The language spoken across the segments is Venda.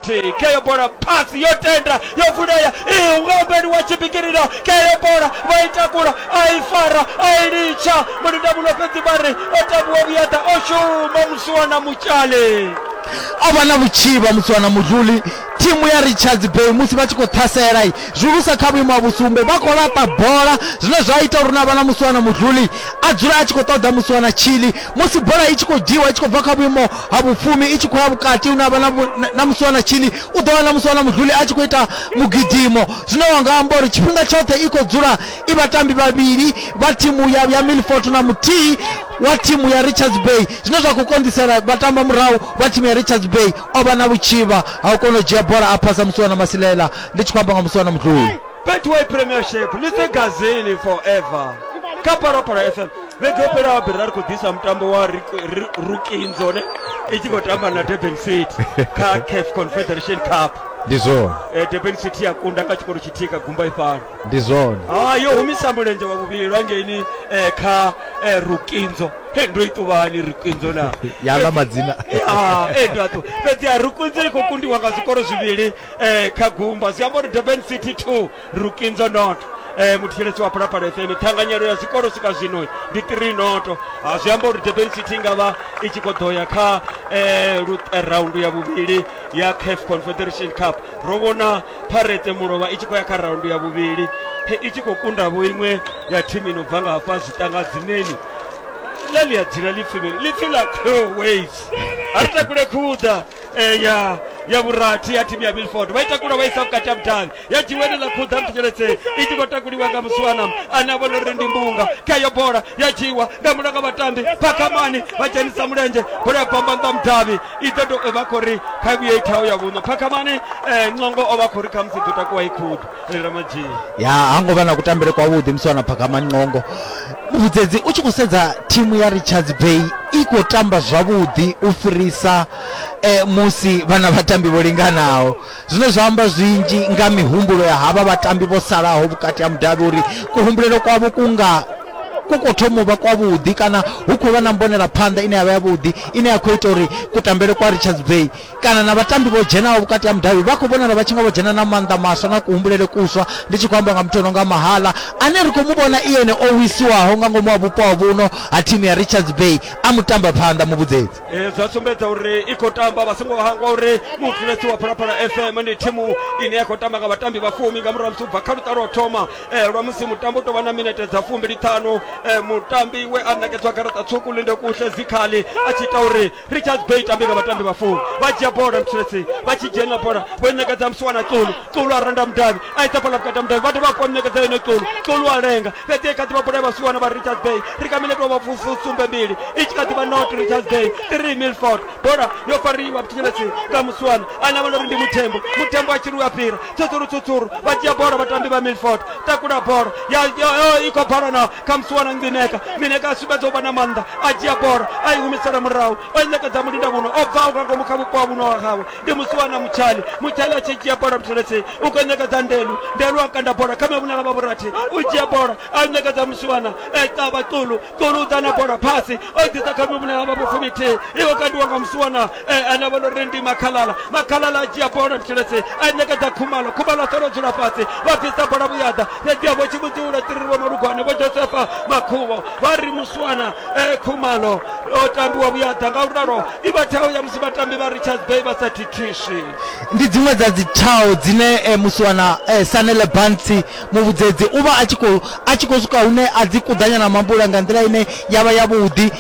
Tika iyo bola pasi yotenda yovuleya iyi ukaombeni wa cipikililo keyo bola vaitakula aifara ailica mulinda muno pezi bari otabu wa vuyata oshuma musuwana mucali abana buciba musuwana mudluli timu ya richards bay musi vha tshi khou ṱhasela i zwihulusa kha vhuimo ha vhusumbe vha khou laṱa bola zwine zwa ita uri na vhana musuwana mudluli a dzule a tshi khou ṱoḓa musuwana tshili musi bola i tshi khou dzhiwa i tshi khou bva kha vhuimo ha vhufumi i tshi khou ya vhukati hune avha na musi wana tshili u ḓo wana musi wana mudluli a tshi khou ita mugidimo zwine wa nga amba uri tshifhinga tshoṱhe i khou dzula i vhatambi vhavhili vha thimu ya, ya milfort na muthihi wa thimu ya richards bay zwine zwa khou konḓisela vhatamba murahu vha thimu ya richards bay o vha na vhutshivha ha u kona u dzhia bola a phasa musi wana masilela ndi tshi khou amba nga musi wana mudluli betway premiership lise gazini forever kha parapara fm vhege yo fhelaho bere ra ri khou ḓisa mutambo wa rukinzo ne i tshi khou tamba na durban city kha caf confederation cup ndi zwone eh, durban city ya kunda nga tshikolo tshithihi ka gumba ifhano ndi zwone ah, yo humisa mulenzhe wa vhuvhili lwa ngeini eh, kha eh, rukinzo he ndo ituvhani rukinzo na yala madzina ah, ndoaṱu fhedzi a rukinzo i khou kundiwa nga zwikolo zwivhili kha gumba zwi amba uri durban city two Rukinzo Noto eh, muthetshelesi wa Phalaphala FM ṱhanganyelo ya zwikolo swika zwino ndi 3 noto ha zwi amba uri Durban City nga vha i tshi khou ḓo ya kha eh, eh, raundu ya vhuvhili ya CAF Confederation Cup ro vhona Pirates Mulovha i tshi khou ya kha raundu ya vhuvhili i tshi khou kunda vho iṅwe ya thimu ino bva nga hafha zwitanga dzineni ḽa ḽi a dzila ḽipfi ḽipfi ḽa Croways a ri takule khuḓa eh, ya ya vhurathi ya thimu ya milford vha itakula vha isa vhukati ha vhudavhi ya dzhiweni ḽa khuḓa mthetsheletse i tshi khou takuliwa nga musiwana ane a vhona uri ndi mbunga kha yo bola ya dzhiwa nga mulanga vhatambi phakamani vha dzhenisa mulenzhe bola ya bamba nnḓa mudavhi i ḓo to vha khou ri kha vhuye i thaho ya vhuṋo phakamani eh, ncongo o vha khou ri khamusi ḓo takuwa i khuḓa ya ha ngo vha na kutambele kwavhuḓi musi wana phakha manqongo vhudzedzi u tshi khou sedza thimu ya richards bay i khou tamba zwavhuḓi u fhirisa eh, musi vhana vhatambi vho linganaho zwine zwa amba zwinzhi nga mihumbulo ya havha vhatambi vho salaho vhukati ha mudavhi uri kuhumbulelo kwavho ku nga ku khou thoma u vha kwavhuḓi kana hu khou vha na mbonela phanḓa ine ya vha yavhuḓi ine ya khou ita uri kutambele kwa richards bay kana na vhatambi vho dzhenaho vhukati ha mudavhi vha khou vhonala vha tshi nga vho dzhena na maanḓa maswa na kuhumbulele kuswa ndi tshi khou amba nga muthu o no nga mahala ane ri khou mu vhona iene o wisiwaho nga ngomu ha vhupo ha vhuno ha thimu ya richards bay a mu tamba phanḓa muvhudzedzi Eh, zwa sumbedza uri i khou tamba vha songo hangwa uri mufulesi wa phalaphala fm ndi thimu ine ya khou tamba nga vhatambi vha fumi nga murahu ha musi ubva kha luṱa lwa thoma eh, lwa musi mutambo u tovha na minete dza fumbili ṱhanu eh, mutambi we a ṋekedzwa garaṱa tswuku linde kuhle dzikhali a tshi ita uri Richards Bay i tambi nga vhatambi vha fumi vha dzhia bola mutsireledzi vha tshi dzhena bola vho i ṋekedza musiwana Xulu Xulu a randa mudavhi a isa bola vhukati ha mudavhi vha dovha hafhu vha mu ṋekedza yone Xulu Xulu a lenga fhedzi i kha ḓi vha bola ya vhasiwana vha Richards Bay ri kha minete wa vhafusumbe mbili i tshi kha ḓi vha not Richards Bay 3 Milford bola yo fariwa mutsireledzi nga musiwana ane a vha na uri ndi muthembo muthembo a tshi ri u a fhira tsutsuru tsutsuru vha dzhia bola vhatambi vha Milford takula bola ya ya- ya- i khou bala na khamusi wana ngineka ngineka a sumbedza u vha na maanḓa a dzhia bola a i humisela murahu o i ṋekedza mulinda muno o bvaho nga ngomu kha vhupo ha vhuno wa hawe ndi musi wana mutshali mutshali a tshi dzhia bola mutheletsei u khou ṋekedza ndelu ndelu a kanda bola kha mavhunela vha vhurathi u dzhia bola a i ṋekedza musi wana e ṱavha ṱulu ṱulu u ḓa na bola phasi o i ḓisa kha mavhunela vha vhufumi thihi i khou kandiwa nga musi wana eh, ane vha no ri ndi makhalala makhalala a dzhia bola mtsheletse a ṋekedza khumalo khumalo a ṱoro dzula fhasi vha bvisa bola vhuyaḓa fhedziha vho tshi vhudziula tiri vho malugwane vho josefa makhuvo vha ri muswana eh, khumalo o tambiwa vhuyaḓa nga u ralo i vha thao ya musi vhatambi vha richards bay vha sa thithiswi ndi dziṅwe dza dzi thao dzine eh, musiwana eh, sanele bantsi muvhudzedzi u vha a tshi khou a tshi khou swika hune a dzi kuḓanya na mambula nga nḓila ine ya vha yavhuḓi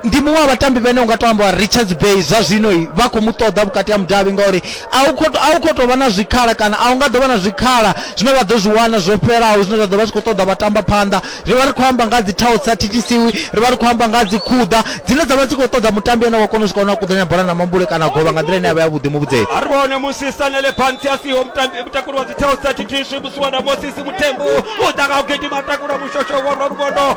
ndi muṅwe wa vhatambi vhane u nga to amba richards bay zwa zwino vha khou mu ṱoḓa vhukati ha mudavhi ngauri a u khou tou vha na zwikhala kana a u nga ḓo vha na zwikhala zwine vha ḓo zwi wana zwo fhelaho zwine zwa ḓo vha zwi khou ṱoḓa vha tamba phanḓa ri vha ri khou amba nga dzi thaho sa thithisiwi ri vha ri khou amba nga dzi khuḓa dzine dza vha dzi khou ṱoḓa mutambi ane wa kona u swika hone a kuḓanya bola na mambule kana govha nga nḓila ine ya vha ya vhuḓi muvhudzeni a ri vhone musi sanele phansi a siho mutakuli wa dzi thaho sa thithiswi musi wana mosisi muthembu u ḓa nga u gidima takula mushosho wa lwa lugondo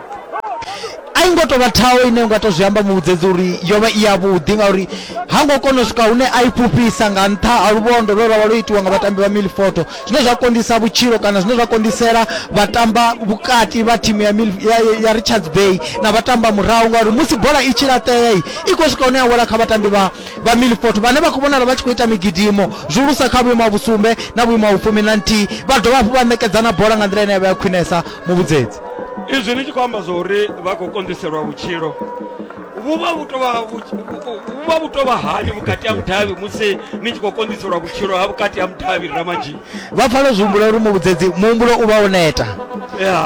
a i ngo tou vha thaho ine nga tou zwi amba muvhudzedzi uri yo vha i yavhuḓi ngauri ha ngo kona u swika hune a i fhufhisa nga nṱha ha luvhondo lwe lwa vha lwo itiwa nga vhatambi vha milfoto zwine zwa konḓisa vhutshilo kana zwine zwa konḓisela vhatamba vhukati vha thimu ya, Milf- ya, ya- ya richards bay na vhatamba murahu ngauri musi bola i tshi laṱea i i khou swika hune ya wela kha vhatambi vha, vha milfoto vhane vha khou vhonala vha tshi khou ita migidimo zwihulusa kha vhuimo ha vhusumbe na vhuimo ha vhufumi na nthihi vha dovha hafhu vha ṋekedza na bola nga nḓila ine ya vha ya khwinesa muvhudzedzi izwi ni tshi khou amba zwauri vha khou konḓiselwa vhutshilo vhuvha vhu tovha vhuvha vhu tovha hani vhukati ha mudavhi musi ni tshi khou konḓiselwa vhutshilo ha vhukati ha mudavhi ramadzhi vha pfala zwi humbula uri muvhudzedzi muhumbulo u vha wo neta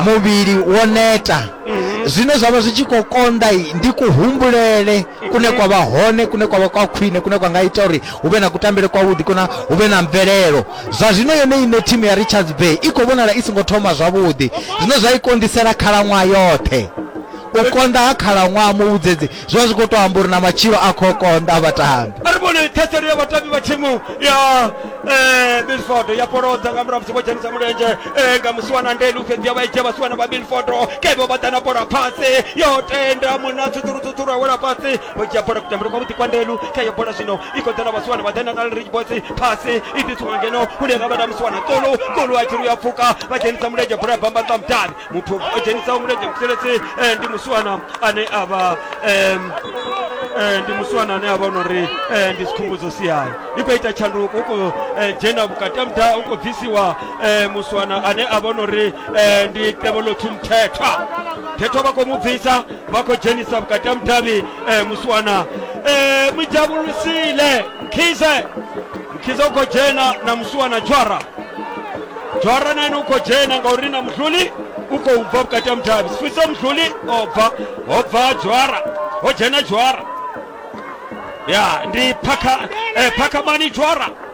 muvhili wo neta mhm. zwine zwa vha zwi tshi khou konḓa ndi kuhumbulele kune kwa vha hone kune kwa vha kwa khwine kune kwa nga ita uri hu vhe na kutambele kwavhuḓi kuna hu vhe na mvelelo Zwa zwino yone iṋe thimu ya Richards Bay i khou vhonala i songo thoma zwavhuḓi zwine zwa i kondisela khalaṅwaha yoṱhe. U konḓa ha khalaṅwaha muvhudzedzi zwi vha zwi khou tou amba uri na matshilo a khou konḓa vhatambi. A ri vhone ṱhaselelo ya vhatambi vha thimu ya eh, Milford ya polodza nga murahu musi vho dzhenisa mulenzhe eh, nga musiwana ndelu fhedzi ya vha i dzhia vhasiwana vha Milford kevho vha ḓa na bola fhasi yo tenda muna tsudzurutsudzuru awela fhasi vho dzhia bola kutambele kwavhuḓi kwa ndelu kha yo bola zwino i khou ḓela vhasiwana vha ḓe natal rich boys phasi i ḓisiwa ngeno hune nga vhana musiwana tsolo kolo a tshiri ya pfuka vha dzhenisa mulenzhe bola ya bamba ṱwa mudavhi muthu o dzhenisaho mulenzhe muselesi eh, ndi musiwana ane a vha eh, ndi musiwana ane a vha no ri eh, ndi sikhumbudzo siyayo i khou ita tshanduko u khou dzhena vhukati ha muda u khou bvisiwa musiwana ane a vha no ri ndi tevhelo thumthethwa thethwa vha khou mu bvisa vha khou dzhenisa vhukati ha mudavhi eh, muswana eh, mujabululisile nkhize nkhize u khou dzhena na muswana dzhwara dzhwara na ene u khou dzhena ngauri na mudluli u khou bva vhukati ha mudavhi sifiso mudluli o bva ho bva dzhwara ho dzhena dzhwara ya ndi phakha eh, phakhamani dzhwara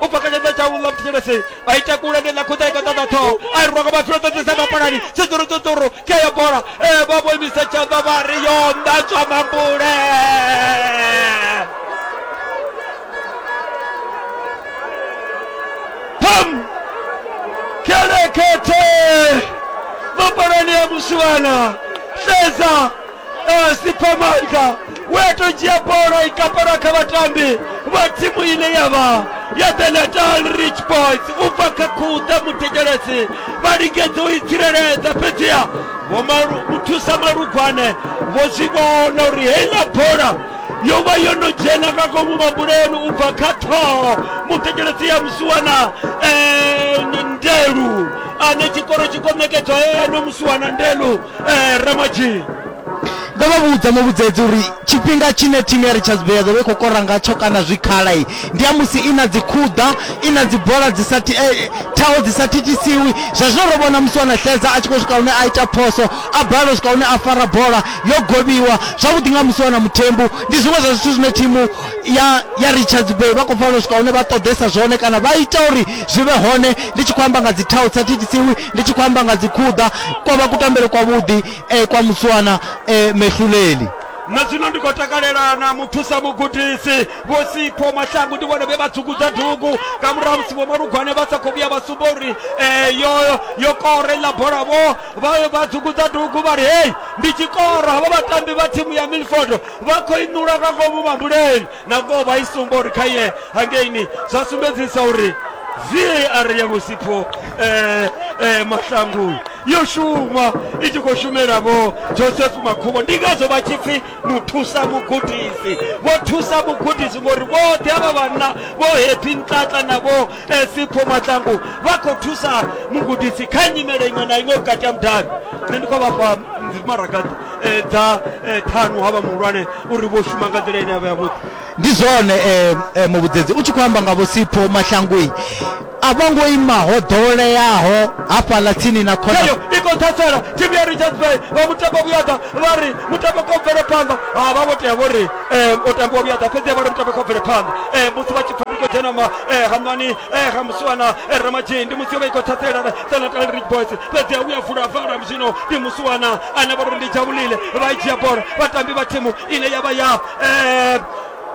u bva kha tshanḓa tshawu ḽa vhuthetshelesi a ita kule ndi ḽa khuḓa i konḓa ḓa ṱhoho a i rwa nga vhathu ro ṱoḓisa mapalani tshiṱuru tshiṱuru khe ya bola e vha vho imisa tshanḓa vha ri yo nḓatswa mambule pam kelekete mapalani ya muswana sedza Eh, sipamanga weto dzhia bola i kapela kha vhatambi vha thimu ine ya vha ya the natal rich boys u bva kha khuḓa muthetshelesi vha lingedza u i tsireledza fhedziha vho Malu- vho thusa malugwane vho zwi vhona uri heiḽa bola yo vha yo no dzhena nga ngomu mabuleni u bva kha ṱhoho muthetshelesi ya musiwana eh, ndelu ane tshikoro tshi komekedzwa eno musiwana ndelu eh, ramadzhii ndo vha vhudza muvhudzedzi uri tshifhinga tshine thimu ya richards bay ya ḓo vha i khou kora ngatsho kana zwikhala i ndi ya musi i na dzikhuḓa i na dzibola dzi sa ti- eh, thaho dzi sa thithisiwi zwa zwino ro vhona musi wana hledza a tshi khou swika hune a ita phoso a balelwa u swika hune a fara bola yo govhiwa zwavhuḓi nga musi wana muthembu ndi zwiṅwe zwa zwithu zwine thimu ya ya richards bay vha khou fanela u swika hune vha ṱoḓesa zwone kana vha ita uri zwi vhe hone ndi tshi khou amba nga dzithaho dzi sa thithisiwi ndi tshi khou amba nga dzikhuḓa kwa vha kutambele kwavhuḓi eh, kwa muswana eh, mehluleli na zwino ndi khou takalela na muthusa mugudisi vho sipho mashangu ndi vhone vhe vha dzungudza dugu nga murahu musi vho malugwane vha sa khou vhuya vha sumba uri eh, yo yo kora iḽa bola vho vha vha dzungudza dugu vha ri hei ndi tshikoro havha vhatambi vha thimu ya milford vha khou inula nga ngomu mambuleni na ngoho vha i sumba uri kha ye hangeini zwa sumbedzisa uri var ya vhusipho eh, eh, mahlangu yo shuma i tshi khou shumela vho joseph makhubo ndi ngazwo vha tshi pfhi muthusa mugudisi vho thusa mugudisi ngori vhoṱhe avha vhanna vho happy ntlatla na vho eh, sipho mahlangu vha khou thusa mugudisi kha nyimele iṅwe na iṅwe vhukati ha mudavhi nṋe ndi khou vhafha maraga eh, dza eh, ṱhanu ha vha muhulwane uri vho shuma nga nḓila ine ya vha yavhuḓi ndi zwone eh, eh, muvhudzedzi u tshi khou amba nga vhosipho mahlangui a vho ngo ima ho ḓoweleaho hafhaḽa tsini na khona eyo i khou ṱhasela thimu ya richards bay vha mutambo vhuyaḓa vha ri mutambo kha u bvele phanḓa ha vha vho tea vho ri um u tambiwa vhuyaḓa fhedzi vha ri mutambo kha u bvele phanḓa um musi vha tshi pfa ndi khou dzhena ma eh, hamani eh, ha musiwana eh, ramadzhei ndi musi yo vha i khou ṱhasela Senatal Ridge Boys fhedzi a vhuya vula vara zwino ndi musiwana ane vha ri ndi dzhavhulile vha i dzhia bola vhatambi vha thimu ine ya vha ya eh,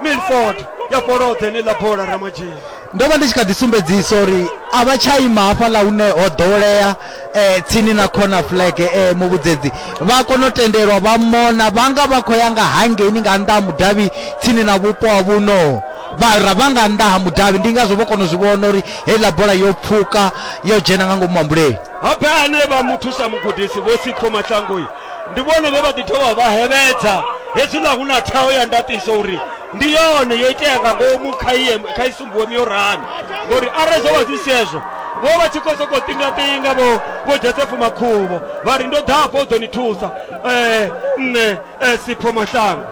milford ya fholodza heneiḽa bola ramadzhini ndo vha ndi tshi kha ḓi sumbedzisa uri a vha tsha ima hafhaḽa hune ho ḓowelea um tsini na corner flag um muvhudzedzi vha kona u tendelwa vha mona vha nga vha khou ya nga hangeini nga nnḓa ha mudavhi tsini na vhupo ha vhuno vhara vha nga nnḓa ha mudavhi ndi ngazwo vho kona u zwi vhona uri heiḽa bola yo pfuka yo dzhena nga ngomu mambuleni habe ane vha muthusa mugudisi vho sipho mahlangoi ndi vhone vhe vha ḓi dovha vha hevhedza hezwiḽa hu na thaho ya ndaṱiso uri ndi yone yo itea nga ngomu kha iye kha isumbuwe miorani ngori arali zwo vha zwi sezwo vho vha tshi khou sokou ṱingaṱinga vho vho josefu makhuvho vha ri ndo ḓafho u ḓo ni thusa um nṋe um sipho mahlango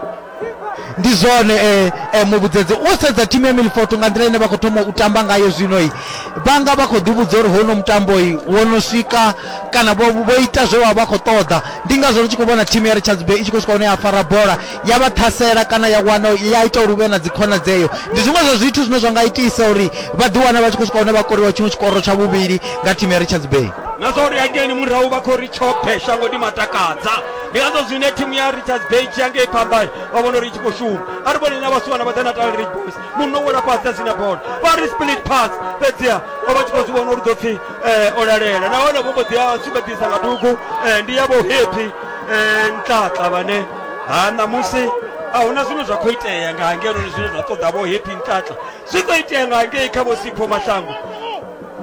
ndi zwone eh, eh, muvhudzedze wo sedza thimu ya milfoto nga nḓila ine vha khou thoma u tamba ngayo zwinoi vhanga vha khou ḓivhudza uri hono mutamboi wo no swika kana vho vho ita zwe vha vha khou ṱoḓa ndi ngazwo ri tshi khou vhona thimu ya richards bay i tshi khou swika hone ya fara bola ya vha ṱhasela kana ya wana ya ita uri hu vhe na dzikhona dzeyo ndi zwiṅwe zwa zwithu zwine zwa nga itisa uri vha ḓiwana vha tshi khou swika hone vha koriwa tshiṅwe tshikoro tsha vhuvhili nga thimu ya richards bay na zwa uri ageni murahu vha khou ri tshoṱhe shango ndi matakadza ndi ngazwo zwine thimu ya richards bay tshi ya ngei phambani vha vhona uri i tshi khou shuma a ri vhone na vhasiwana vha dza natal rig boys muno wela fhasi dza sina bola vha ri split pass fhedziha o vha tshi khou zwi vhona uri ḓo pfhi eh, o lalela nahone vho mbo ḓi a sumbedzisa nga dugu eh, ndi yavho happy eh, ntlatla vhane ha ṋamusi a huna zwine zwa khou itea nga hangenoni zwine zwa ṱoḓa vho happy ntlatla zwi khou itea nga hangei kha vho sipho maṱango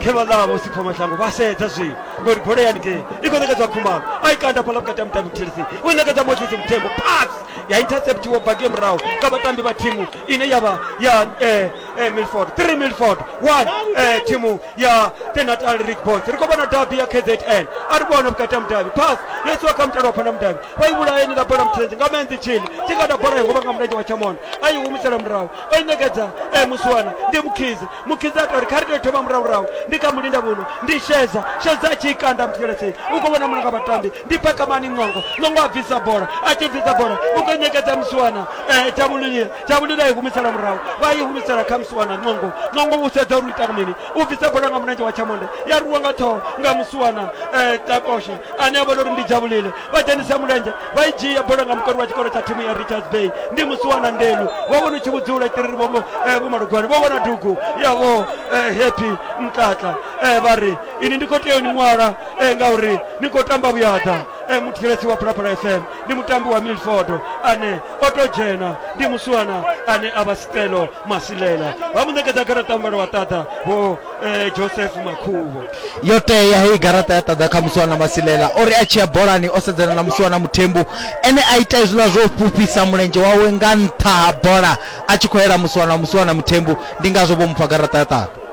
khe vha ḽa vho sipho mashango vha sedza zwi ngori bola ya haningei i khou ṋekedzwa khumalo a i kanda fhaḽa vhukati ha mutambi muthelisi u i ṋekedza moses muthembo pass ya interceptiwa baki ya murahu nga vhatambi vha thimu ine ya vha ya eh, eh, milford 3 milford 1 eh, thimu ya the natal rig boys ri khou vhona dabi ya kzn a ri vhona vhukati ha mudavhi pass yo isiwa kha mutalo wa phana mudavhi vha i vhulaeni ḽa bola muthelisi nga menzi tshini tshi kanda bola i huvha nga mulenzhe wa tshamona a i humisela murahu o i ṋekedza eh, musiwana ndi mukhizi mukhidzi a tori kha ri tou thoma murahurahu ndi kha mulinda vhuno ndi sheza sheza a tshi ikanda mutheletsei u khou vhona mulanga vhatambi ndi phakamani ṅongo ṅongo a bvisa bola a tshi bvisa bola u khou ṋekedza musiwana um tavhululile tavhulule a i humisela murahu vha i humisela kha musiwana ṅongo ṅongo u sedza uri u ita mini u bvisa bola nga mulenzhe wa tshamonde ya rwiwa nga ṱhoho nga musiwana um takoshe ane a vhona uri ndi dzhavhulile vha dzhenisa mulenzhe vha i dzhia bola nga mukoni wa tshikolo tsha thimu ya richards bay ndi musi wana ndelu vho vhona utshi vhudzula tiriri vho eh, vho malugwane vho vhona dugu yavho eh, happy mtlatla eh, vha ri ini ndi khou tea ni ṅwala eh, ngauri ni khou tamba vhuyada eh, muthetshelesi wa phalaphala fm ndi mutambi wa milford ane o to dzhena ndi musiwana ane a vha stelo masilela vha mu ṋekedza garaṱa muvhala wa ṱaḓa vho eh, joseph makhuvho yo tea heyi garaṱa ya ṱaḓa kha musiwana masilela o ri a tshi ya bolani o sedzana na musiwana muthembu ene a ita hezwiḽa zwo fhufhisa mulenzhe wawe nga nṱha ha bola a tshi khou yela musiwana musiwana muthembu ndi ngazwo vho mupfa garaṱa ya ṱaḓa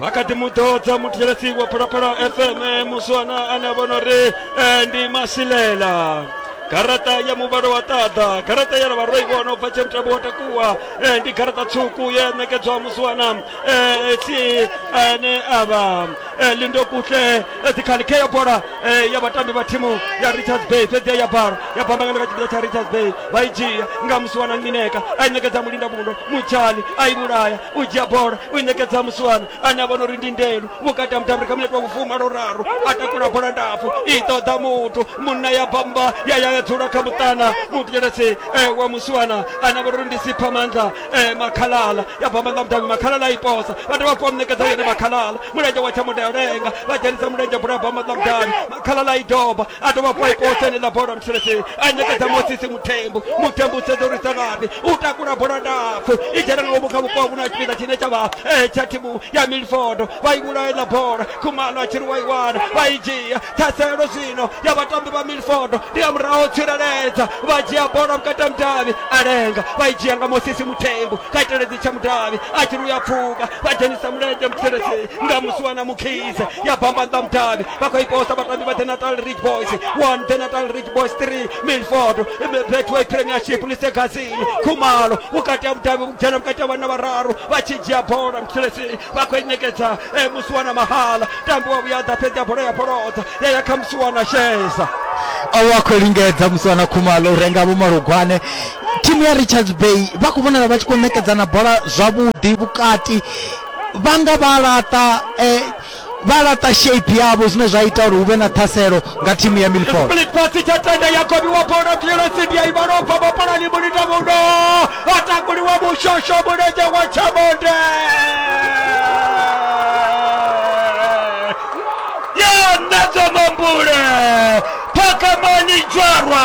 vha kha ḓi mu ḓodza muthetshelesi wa phalaphala fm eh, musiwana ane a vhona uri eh, ndi masilela garaṱa ya muvhalo wa ṱaḓa garaṱa ya na vharoi vho no bva tshe mutambo wa takuwa eh, ndi garaṱa tswuku ye ṋekedzwa musiwana eh, si ane a vha eh, lindo kutle eh, dzikhali khe ya bola eh, ya vhatambi vha thimu ya richards bay fhedzi ya bala ya bambangana kha tshipiḓa tsha richards bay vha i dzhia nga musiwana mineka a i ṋekedza mulinda mundo mutshali a i vhulaya u dzhia bola u i ṋekedza musiwana ane a vhona uri ndi ndelu vhukati ha mutambi kha minete wa vhufuma lwo raru a takula bola ndapfu i ṱoḓa muthu munna ya bamba ya ya ya dzula kha muṱana mutshelethi eh, wa musiwana ane a vhona uri ndi sipha maanḓa eh, makhalala ya bamba nga mutambi makhalala i posa vha dovha fho ṋekedza yone makhalala mulenzhe wa tsha mudelenga vha dzhenisa mulenzhe bola ya bamba nga mutambi makhalala i doba a dovha hafhu a i posa enela bola mutshileseni a ṋekedza mosisi muthembu muthembu u sedza uri sa ngafhi u takula bola ndapfu i dzhena nga ngomu kha vhupo ha vhuna tshipiḓa tshine tsha vha eh, tsha thimu ya milfodo vha i vhulaya iḽa bola khumalo a tshiri wa i wana vha i dzhia ṱhaselo zwino ya vhatambi vha milfodo ndi ya muraho tsireledza vha dzhia bola vhukati ha mudavhi a lenga vha i dzhia nga mosisi muthembu kha iteledzi tsha mudavhi a tshiri u ya pfuka vha dzhenisa mulenzhe mutshileseni nga musi wana mukhise ya bamba nda mudavhi vha khou i posa vhatambi vha the natal rich boys one the natal rich boys three milford betway premiership lisegazini khumalo vhukati ha vhudavhi vhugena vhukati ha vhana vhararu vha tshi dzhia bola muthelesini vha khou i ṋekedza eh, musi wana mahala tambi wa vhuyaḓa fhedzi ya bola ya bolodza ya ya kha musi wana sheza awo a khou lingedza musi wana khumalo u renga vho malugwane thimu ya richards bay vha khou vhonala vha tshi khou ṋekedzana bola zwavhuḓi vhukati vha nga vha laṱa eh, vha laṱa shape yavho zwine zwa ita uri hu vhe na ṱhaselo nga thimu ya milford Split pass tsha tenda ya kobiwa bono clearance ndi ya Ivano bva mapolani mulita muno atakuliwa mushosho mulenzhe wa Chamonde ya nadzo mambule phakamani dzwarwa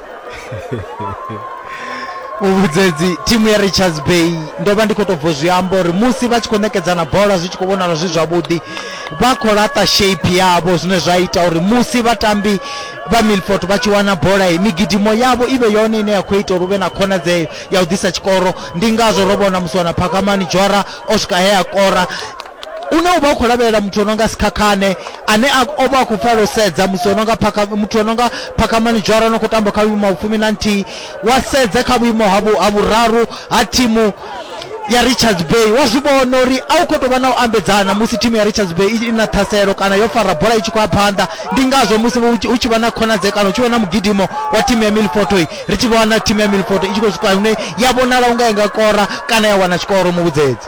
u vhudzedzi thimu ya richards bay ndo vha ndi khou tou bvo zwi amba uri musi vha tshi khou ṋekedzana bola zwi tshi khou vhonala zwi zwavhuḓi vha khou laṱa shape yavho zwine zwa ita uri musi vhatambi vha milfort vha tshi wana bola i migidimo yavho i vhe yone ine ya khou ita uri hu vhe na khonadzeo ya u ḓisa tshikoro ndi ngazwo ro vhona musi wana phakamani dzhora o swika he a kora une uvha u khou lavhelela muthu o nonga sikhakhane ane o vha a khou pfala u sedza musi o nonga muthu o nonga phakamani dzhara no khou tamba kha vhuimo ha fumi na nthihi wa sedza kha vhuimo ha vhuraru ha thimu ya richards bay wa zwi vhona uri a u khou tou vha na u ambedzana musi thimu ya richards bay i na ṱhaselo kana yo fara bola i tshi khou ya phanḓa ndi ngazwo musi hu tshi vha na khonadzekano hu tshi vha na mugidimo wa thimu ya milfotoi ri tshi vhona thimu ya milfoto i tshi khou swika hune ya vhonala u nga i nga kora kana ya wana tshikoro muvhudzedzi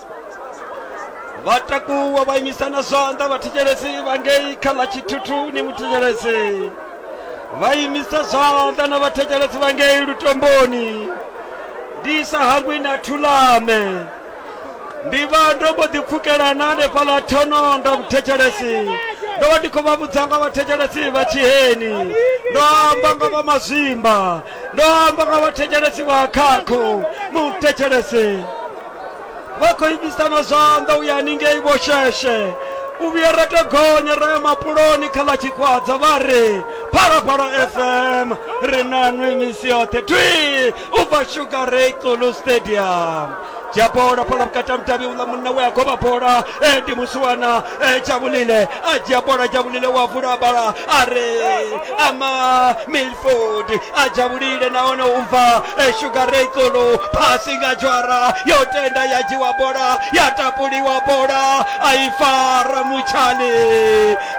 vha takuwa vha imisa na zwanḓa vhathetshelesi vha ngei kha ḽa tshithuthuni muthetshelesi vha imisa zwanḓa na vhathetshelesi vha ngei lutomboni ndi sa hangwi na thulame ndi vha ndo mbo ḓi pfukelana hanefhaḽa thononda vhuthetshelesi ndo vha ndi khou vha vhudza nga vhathetshelesi vha tshiheni ndo amba nga vha mazwimba ndo amba nga vhathetshelesi vha khakho muthetshelesi vha khou imisa na zwanḓa u ya haningei vho sheshe u vhuya ra to gonya ra ya mapuloni kha ḽa tshikwadza vha ri phalaphala fm ri na nwe misi yoṱhe twi u bva sugar ray xulu stadium dzhia bola phala vhukati ha mudavhi uḽa munna we a govha bola e ndi musiwana Eh, jabulile a dzhia bola jabulile wa vula bala a re ama milford a jabulile nahone u bva eh, sugar rekolo phasi nga dzhwara yo tenda ya dzhiwa bola ya tapuliwa bola a i fara mutshani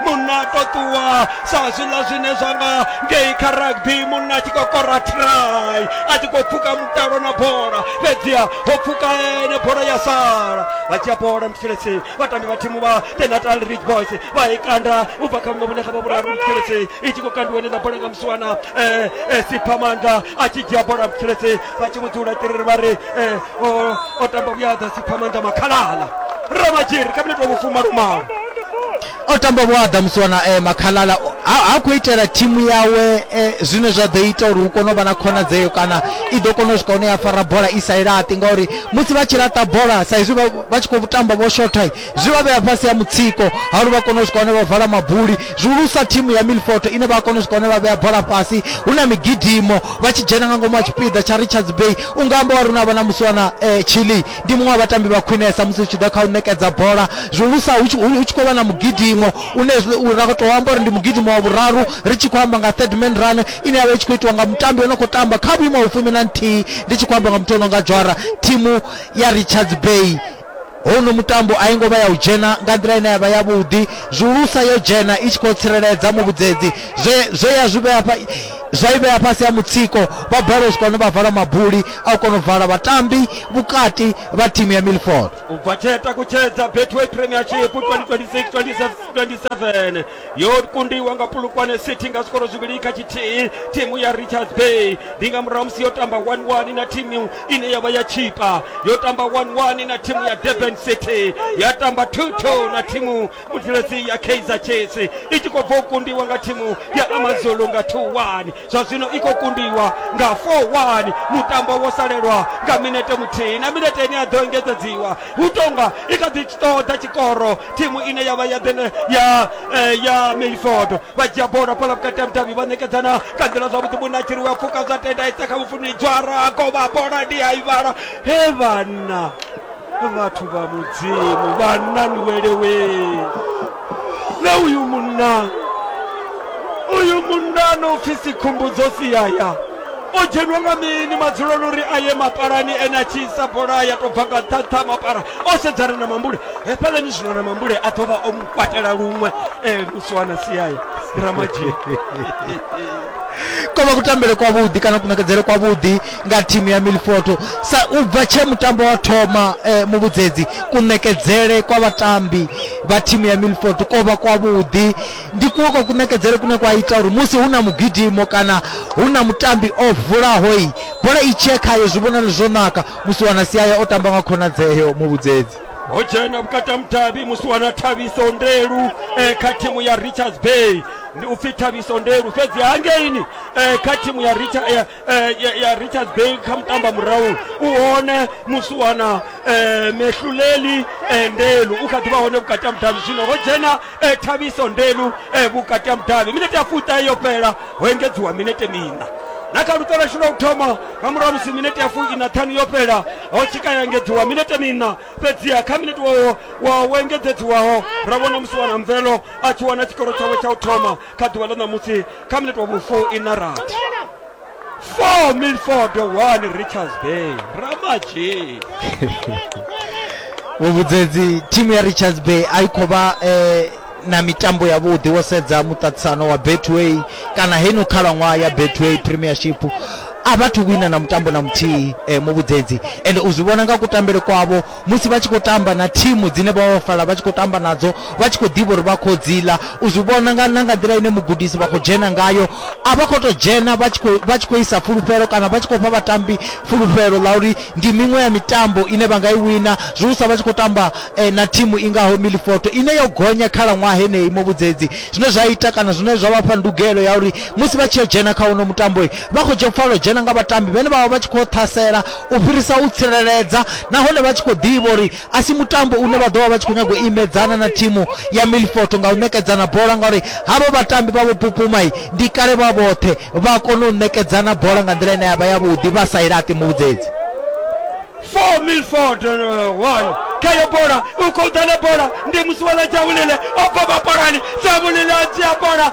munna to ṱuwa sa zwiḽa zwine zwa nga ngei kha rugby munna a tshi khou kora try a tshi khou pfuka mutalo na bola fhedziha ho pfuka ene bola ya sala a dzhia bola mutshilesi vhatambi vha thimu vha the natal ridge boys vha i kanda u bva kha vhuṅwe vhune kha vha vhuraru vhutshelesi i tshi khou kandiwa nila bola nga musiwana eh, eh, siphamanga a tshi dzhia bola vhutshelesi vha tshi vhudzula tiriri vha ri eh, o tamba vhuyaḓa siphamanga makhalala ramadzhiri kha minete wa vhufuma lumalo o tamba vhuaḓa musi wana eh, makhalala ha ha khou itela thimu yawe eh, zwine zwa ḓo ita uri hu kone u vha na khonadzeo kana i ḓo kona u swika hune ya fara bola i sa i laṱi ngauri musi vha tshi laṱa bola sa izwi vha- vha tshi khou tamba vho shotha zwi vha vhea fhasi ya mutsiko ha uri vha kone u swika hune vha vala mabuli zwihulusa thimu ya milfoto ine vha kona u swika hune vha vhea bola fhasi hu na migidimo vha tshi dzhena nga ngomu ha tshipiḓa tsha richards bay u nga amba wa ri na vha na musi wana eh, chile ndi muṅwe wa vhatambi vha khwinesa musi zwi tshi ḓa kha u ṋekedza bola zwihulusa hu tshi- hu hu tshi khou vha na mugidimo une zwi- u- ra khou tou amba uri ndi mugidimo wa vhuraru ri tshi khou amba nga third man run ine yavha i tshi khou itiwa nga mutambi o no khou tamba kha vhuimo ha fumi na nthihi ndi tshi khou amba nga muthu o no nga dzwara thimu ya richards bay hono mutambo a i ngo vha ya u dzhena nga nḓila ine ya vha yavhuḓi zwihulusa yo dzhena i tshi khou tsireledza muvhudzedzi zwe zwe ya zwi vhea hafha zwa i vhea fhasi ha mutsiko vha balelwa u swika hune vha vala mabuli a u kona u vala vhatambi vhukati vha thimu ya milford u bva tshee takutshedza betway premiership 2026-2027 yo kundiwa nga pulukwane city nga zwikoro zwivhili kha tshithihi thimu ya richards bay ndi nga murahu musi yo tamba 11 na thimu ine ya vha ya tshipa yo tamba 11 na thimu ya durban city ya tamba 22 na thimu butiresi ya kaizer chiefs i tshi khou bva u kundiwa nga thimu ya amazulu nga 2-1 zwa zwino i khou kundiwa nga 4-1 mutambo wo salelwa nga minete muthihi na minete ine ya ḓo engedzedziwa hu tonga i kha ḓi ṱoḓa tshikoro thimu ine ya vha ya ḓene ya eh, ya milford vha dzhia bola phala vhukati ha mudavhi vha ṋekedzana nga nḓila zwavhuḓi munatshiri wa pfuka zwa tenda isa kha vhufuni dzwara kovha bola ndi a i vhala he vhana vhathu vha mudzimu vhanna ni welewe na uyu munna uyu munna no pfi sikhumbudzo siyaya o dzhenwa nga mini madzuloni uri a ye mapalani ene a tshi isa bola ya tou bva nga ṱhaṱha mapara o sedzana na mambule hefhalani zwino na mambule a ḓo vha o mu kwatela luṅwe um lusiwana siyaya ramadzhie ko vha kutambele kwavhuḓi kana kunakedzele kwavhuḓi nga thimu ya Milifoto sa u bva tshe mutambo wa thoma eh, muvhudzedzi kunekedzele kwa vhatambi vha thimu ya Milifoto ko vha kwavhuḓi ndi kuwe kwa kunekedzele kune kwa ita uri musi hu na mugidimo kana hu na mutambi o vulaho i bola i tshiye khayo zwi vhonale zwo naka musi wana siaya o tamba nga khonadzeo muvhudzedzi ho dzhena vhukati ha mudavhi musi wana thabiso ndelu eh, kha thimu ya richards bay ndi upfi thabiso ndelu fhedzi hangeini eh, kha thimu ya Richard, eh, eh, ya, ya richards bay kha mutamba murahu u hone musi u wana eh, mehluleli eh, ndelu u kha ḓi vha hone vhukati ha mudavhi zwino ho dzhena eh, thabiso ndelu eh, vhukati ha mudavhi minete ya fuṱahe yo fhela ho engedziwa minete miṋa na kha luṱo lwashu lwa u thoma nga murahu musi minete ya fuiṋa ṱhanu yo fhela ho tshika ya engedziwa minete miṋa fhedziha kha minete wawo wa wo engedzedziwaho ra vhona musi wana mvelo a tshi wana tshikoro tshawe tsha u thoma kha ḓuvha ḽa ṋamusi kha minete wa vhufo ina rathi four milford one richards bay ramaji vhuvhudzedzi thimu ya richards bay a i khou vha eh, na mitambo ya vhuḓi wo sedza muṱaṱisano wa betway kana heno khalaṅwaha ya betway premiership a vhathu wina na mutambo na muthihi eh, muvhudzedzi ende u zwi vhona nga kutambele kwavho musi vha tshi khou tamba na thimu dzine vha ofala vha tshi khou tamba nadzo vha tshi khou ḓivha uri vha khou dzi ḽa u zwi vhona nga na nga nḓila ine mugudisi vha khou dzhena ngayo a vha khou tou dzhena vha tshi khou vha tshi khou isa fulufhelo kana vha tshi khou fha vhatambi fulufhelo ḽa uri ndi miṅwe ya mitambo ine vha nga i wina zwi usa vha tshi khou tamba eh, na thimu i ngaho milifoto ine yo gonya khalaṅwaha heneyi muvhudzedzi zwine zwa ita kana zwine zwa vha fha ndugelo ya uri musi vha tshi yo dzhena kha uno mutambo vha khou dzhena pfala u dzhena nga vhatambi vhene vha vha vha tshi khou ṱhasela u fhirisa u tsireledza nahone vha tshi khou ḓivha uri a si mutambo une vha ḓo vha vha tshi khou nyaga u imedzana na thimu ya milfoto nga u ṋekedzana bola ngauri havho vhatambi vha vho pupumai ndi kale vha vhoṱhe vha kona u ṋekedzana bola nga nḓila ine ya vha yavhuḓi vha sa i laṱi muvhudzedzi for milford uh, one khayo bola u khou ḓa na bola ndi musiwana dzavhulile o bva vhapalani dzavhulile a dzhia bola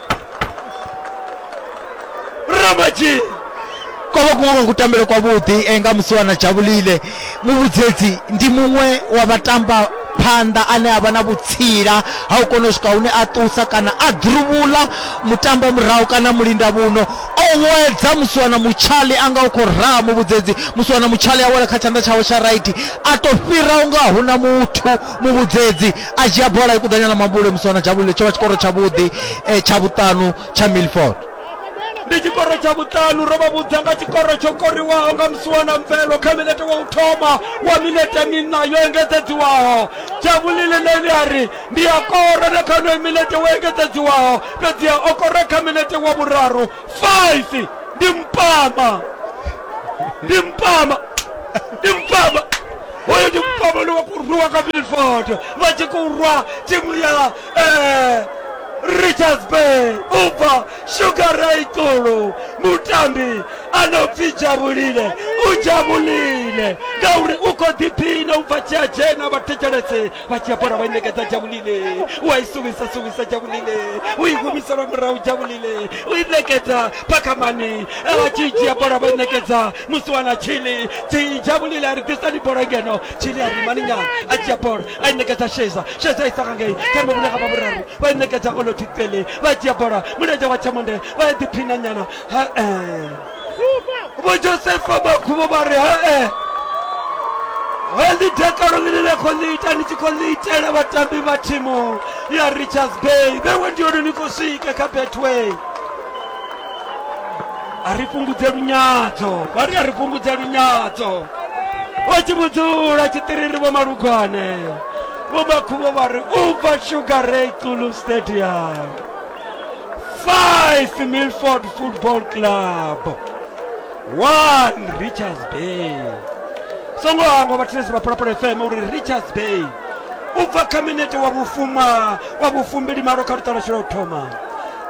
rambaji ko vha kuṅwe kwa kutambele kwavhuḓi eh, nga musiwana dzhavhulile muvhudzedzi ndi muṅwe wa vhatamba phanḓa ane a vha na vhutsila ha u kona u swika hune a ṱusa kana a ḓuruvhula mutambo murahu kana mulinda vhuno o wedza musiwana mutshali a nga u khou raha muvhudzedzi musiwana mutshali a wela kha tshanḓa tshawe tsha raiti a tou fhira u nga huna muthu muvhudzedzi a dzhia bola i kuḓanya ḽa mabule musi wana dzhavhulile tsho vha tshikoro tshavhuḓi eh, tsha vhuṱanu tsha milford ndi tshikoro tsha vhuṱanu ro vha vhudza nga tshikoro tsho koriwaho nga musiwana mvelo kha minete wa u thoma wa minete minna yo engedzedziwaho dzhavhulile neli a ri ndi a kora na kha onoyo minete wo engedzedziwaho fhedziha o kora kha minete wa vhuraru 5 ndi mpama ndi mpama ndi mpama hoyo ndi mupambano wa kurwiwa ka milford vha tshi khou rwa thimu ya eh, richards bay ubva shugaraitulu mutambi anopfi jabulile u jabulile ngauri u khou ḓiphina u bva tshia dzhena vhathetshelese vha tshia bola vha i ṋekedza jabulile u a i suvisa suvisa jabulile u i humisela murahu jabulile u i ṋekedza phakamani vha tshi dzhia bola vha i ṋekedza musi wana chili tijabulile a ri ḓisani bola ngeno chili a ri mani nyana a dzhia bola a i ṋekedza sheza sheza isa nga ngei kha mavhune ga vhavhuraru vha i ṋekedza oloti tsele vha dzhia bola mulenzhe wa tshamonde vha ya ḓiphina nyana ha-e vho josefa makhuvho vha ri ha-e Heli dakalo lilile kolita nichikolitela batambi ba timu ya Richards Bay bewe ndiyo nikusike ka Betway a ri fhungudze lunyadzo vha ri a ri fhungudze lunyadzo vha tshi vhudzula tshiṱiriri vho malugwane vho makhuvho vha ri u bva sugar ray xulu stadium five milford football club one richards bay songo hangwa vhathetshelesi vha phalaphala fm uri richards bay u bva kha minete wa vhufuma wa vhufumbili malo kha luṱalasho lwa u thoma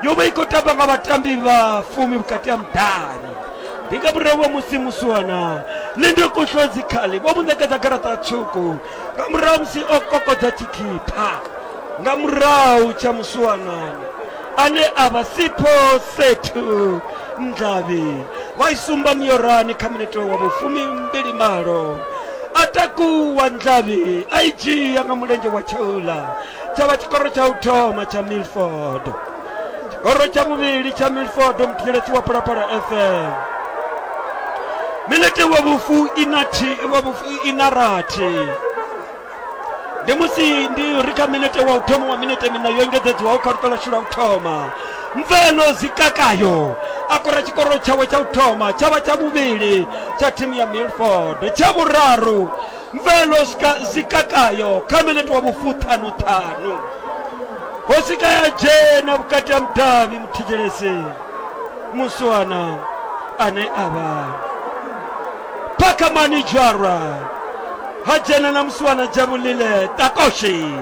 yo vha i khou tamba nga vhatambi vha fumi vhukati ha mudani ndi nga murahu wa musi musuwana lindo kuhlwa dzikhali vho mu ṋekedza garaṱa tswuku nga murahu ha musi o kokodza tshikhipha nga murahu tsha musuwanana ane a vha sipho sethu ndlavhi vha i sumba miorani kha minete wa vhufumi mbili malo a takuwa ndlavhi a i dzhia nga mulenzhe wa tshaula tsha vha tshikoro tsha u thoma tsha milford tshikoro tsha vhuvhili tsha milford muthinyelesi wa phalaphala fm minete wa vhufu ina thi wa vhufu ina rathi ndi musi ndi ri kha minete wa u thoma wa minete mina yo engedzedzwaho kha luṱo ḽashu lwa u thoma mveno zikakayo a kora tshikoro tshawe tsha u thoma tsha vha tsha vhuvhili tsha thimu ya milford tsha vhuraru mvelo zikakayo kha minete wa vhufuṱhanuṱhanu hosi ka ya dzhena vhukati ha mudavhi muthetshelesi musiwana ane a vha phakamani dzwarwa ha dzhena na musiwana dzhavulile takoshi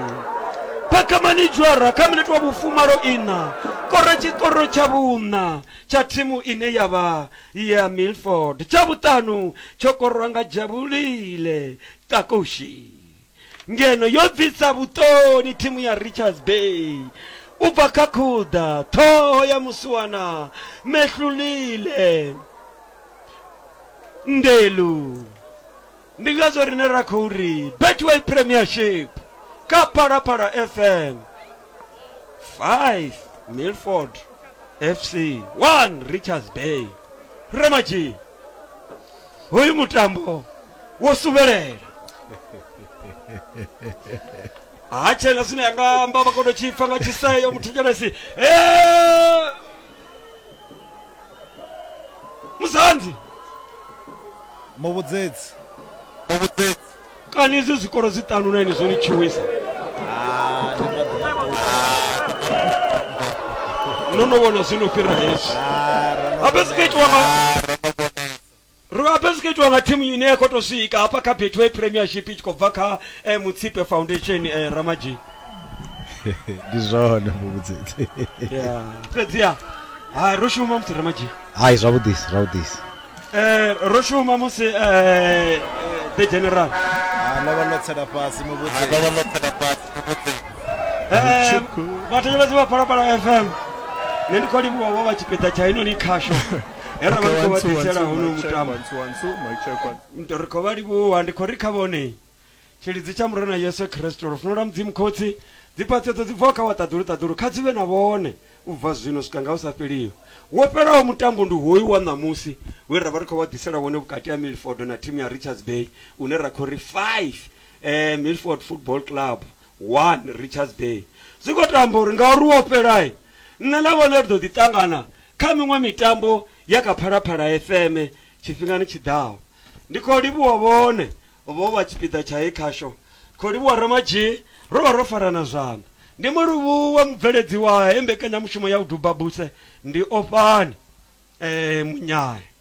phakamani dzwarwa kha minete wa vhufumalo ina kora tshikoro tsha vhuṋa tsha thimu ine ya vha ya Milford, tsha vhuṱanu tsho korwa nga Jabulile Kakushi, ngeno yo bvisa vhuṱoni thimu ya Richards Bay u bva kha khuḓa ṱhoho ya musiwana Mehlulile Ndelu. Ndi ngazwo rine ra khou ri Betway Premiership kha Phalaphala FM 5 Milford FC 1 Richards Bay Ramaji hoyu mutambo wo suvhelela ha tshena zwine yanga amba vha kono tshipfa nga tshiseyo muthetshelesi musandi muvhudzedzi muvhudzedzi kani izwi zwikolo zwi ṱanu na ini zwo ni tshiwisa Ah, ndi maḓi no no vhona zwino fhira hezwi Ah, ra no- ha fhedzi kha itiwa nga Ro a pezeketiwa nga thimu ine ya khou tou swika hafha kha Betway Premiership i tshi khou bva kha eh, Mutsipe Foundation eh, Ramaji. ndi zwone muvhudzedzi Yeah. Fhedziha ha ro shuma musi Ramaji. hayi zwavhuḓisi zwavhuḓisi Eh ro shuma musi eh eh, the general. no vha no tsela fhasi muvhudzi Eh vhathetshelesi vha Phalaphala FM. Nṋe ndi khou livhuwa vho vha tshipiḓa tsha inoni khasho. he ra vha ri khou vha ḓisela hono mutambo nto ri khou vha livhuwa ndi khou ri kha vhone tshilidzi tsha murena yesu khristo lufuno lwa mudzimu khotsi dziphaṱhedzo dzi bvaho kha wa ṱaḓulu ṱaḓulu kha dzi vhe na vhone u bva zwino swika nga u sa fheliho wo fhelaho mutambo ndi hoyu wa ṋamusi we ra vha ri khou vha ḓisela wone vhukati ha milford na thimu ya richards bay une ra khou ri 5 um eh, milford football club 1 Richards Bay zwi khou tou amba uri ngauri wo fhela, nṋe na vhone ri ḓo ḓi ṱangana kha miṅwe mitambo ya kha Phalaphala FM tshifhingani tshi ḓaho. Ndi khou livhuwa vhone vho vha tshipiḓa tsha he khasho. Ri khou livhuwa Ramadzhie, ro vha ro farana zwanḓa. Ndi mu livhuwa mubveledzi wa he mbekanyamushumo ya Vhudubhabuse, ndi Ofhani Munyai.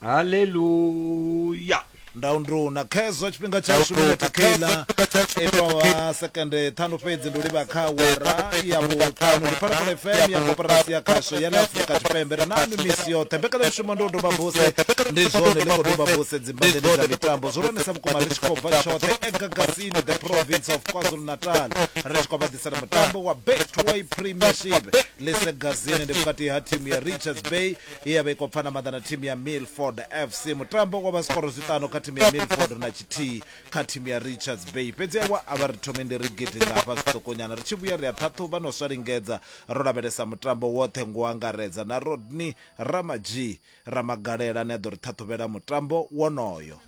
Haleluya! Nda unduna. Khezwo tshifhinga tshashu, minethe kheiḽa i tou vha sekende ṱhanu fhedzi, ndi u livha kha awara ya vhuṱanu. Ndi Phalaphala FM ya Koporasi ya Khasho ya ḽa Afrika Tshipembe. Ri naanwi misi yoṱhe. Mbekanyamushumo ndi u doba buse. Ndi zwone, ḽi khou doba buse dzimbanḓeni dza mitambo zwihulwanesa vhukuma ri tshi khou bva tshoṱhe e gagazini The Province of KwaZulu-Natal ri tshi khou vha ḓisela mutambo wa Betway Premiership. Ḽise gazini ndi vhukati ha thimu ya Richards Bay ye ya vha i khou pfana maḓa na thimu ya Milford FC. Mutambo wo vha zwikworo zwiṱanu kha thimu ya Milford na tshithihi kha thimu ya Richards Bay. Fhedzi avho a vha ri thomi ndi ri gidi nga hafha zwiṱukonyana. Ri tshi vhuya ri a ṱhaṱhuvha na u sa lingedza, ro lavhelesa mutambo woṱhe ngo angaredza na Rodney Ramadzhii Ramagalela ane a ḓo ri ṱhaṱhuvhela mutambo wonoyo.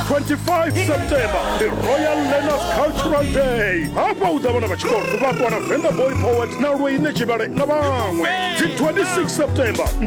25 september ndi royal learners cultural day hafha hu ḓa vhana vha tshikolo vhakwana venda boy poet na lweine tshivhale na vhaṅwe dzi 26 september ndi